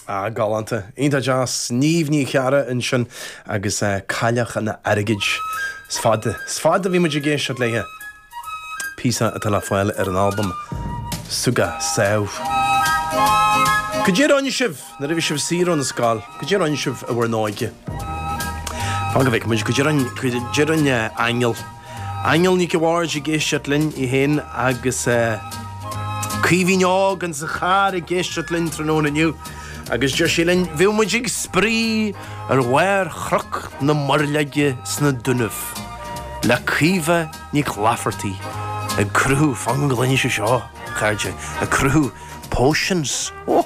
Ah, galánta. Iontach deas Niamh Ní Charra ansin agus Cailleach an Airgid. Is fada, is fada ó bhí muid ag éisteacht léithe. Píosa atá le fáil ar an albam Súgach Sámh. Cad é a rinne sibh, nuair a bhí sibh saor ón scoil, cad é a rinne sibh i bhur n-óige. Fan go bhfeicfidh muid cad é a deireann, cad é a deireann Aingeal. Aingeal Nic a Bhaird ag éisteacht linn, í féin agus Caoimhín Óg ins an charr ag éisteacht linn tráthnóna inniu agus deir sí linn, bhí muid ag spraoi ar bharr Chnoc na Muirleoige sna Dúnaibh le Caoimhe Nic Laifeartaigh ag cruthú, fan go gcluine sibh seo, a chairde, ag cruthú potions, ó!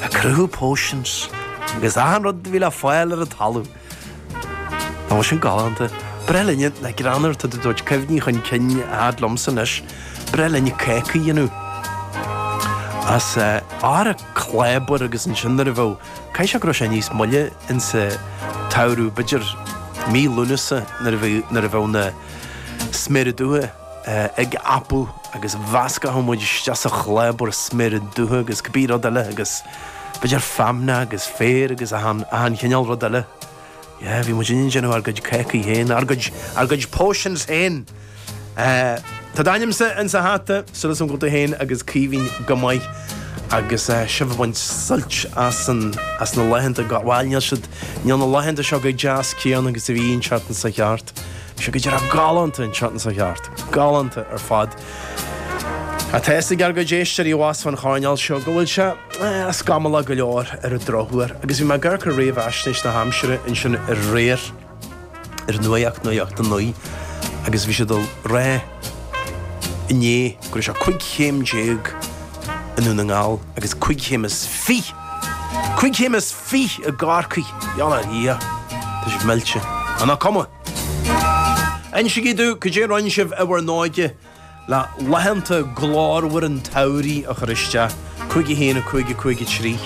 ag cruthú potions agus achan rud a bhí le fáil ar an talamh. Nach bhfuil sin galánta? Ba ghnách linne na greanúr to do dhoit cuimhní chun cinn a fhad liomsa anois. Ba ghnách linne cácaí a dhéanamh. As ár a clábar agus ansin nuair a bheadh, caithfidh sé go raibh sé níos moille insa tsamhradh, b'fhéidir mí Lúnasa nuair a bheadh na sméara dubha, apaí agus mheascfadh muid isteach sa chlábar sméara dubha agus cibé rud eile agus b'fhéidir feamnach agus féar agus achan, achan chineál rud eile. Yeah, bhí muidinne ag déanamh ár gcuid cácaí féin, ár gcuid, ár gcuid potions féin. Tá d'ainmse insa hata, súil agam go bhfuil tú féin agus Caoimhín go maith agus sibh ag baint suilt as an, as na laethanta, bhail níl siad, níl na laethanta seo chomh deas céanna agus a bhí an tseachtain seo chuaigh thart. Seo go dearfa galánta an tseachtain seo chuaigh thart. Galánta ar fad. Tá a fhios ag ár gcuid éisteoirí abhus sa choirnéal seo go bhfuil sé scamallach go leor ar an drochuair agus bhí mé ag amharc ar réamhaisnéis na haimsire ansin aréir ar nuacht, nuacht a 9 agus bhí siad ag rá inné go raibh sé 15 chéim i nDún na nGall agus 25 chéim, 25 chéim i gCorcaigh! Iollar Dhia! Tá sibh millte. Ach nach cuma? Insígí domh cad é a rinne sibh i bhur n-óige le laethanta glórmhara an tsamhraidh a chur isteach. 51 5 5 3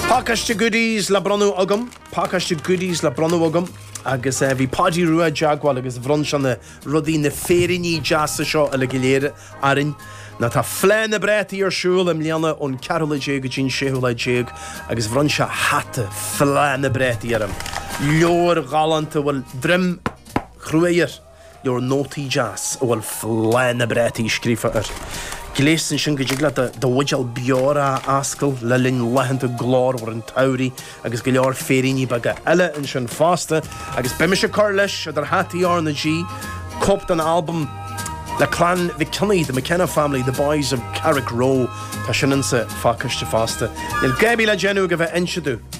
Pacáiste goodies le bronnadh agam, pacáiste goodies le bronnadh agam agus eh, bhí Páidí Rua i dteagmháil agus bhronn sé na rudaí, na féiríní deasa seo uilig go léir orainn, nó tá Fleá na bPrátaí ar siúl i mbliana ón ceathrú lá déag go dtí an séú lá déag agus bhronn sé hata Fleá na bPrátaí orm, leabhar galánta a bhfuil droim chruaidh air, leabhar nótaí deas a bhfuil Fleá na bPrátaí scríofa air. Gléas ansin go dtig leat do bhuidéal beorach a fhoscladh le linn laethanta glórmhara an tsamhraidh. agus go leor féiríní beaga eile ansin fosta, agus beidh mise ag cur leis, idir hataí RnaG, cóip den albam le Clann Mhic Cionnaith, The McKenna Family, The Boys of Carrickroe, tá sin insa phacáiste fosta. Níl agaibh le déanamh ach a bheith ag inse dúinn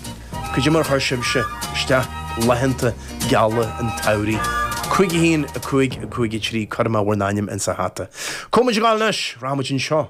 cad é mar a chuir sibhse isteach laethanta geala an tsamhraidh. 51553. Cuirfidh mé bhur n-ainm insa hata. Cá bhfuil muid ag dul anois, rachaimid anseo.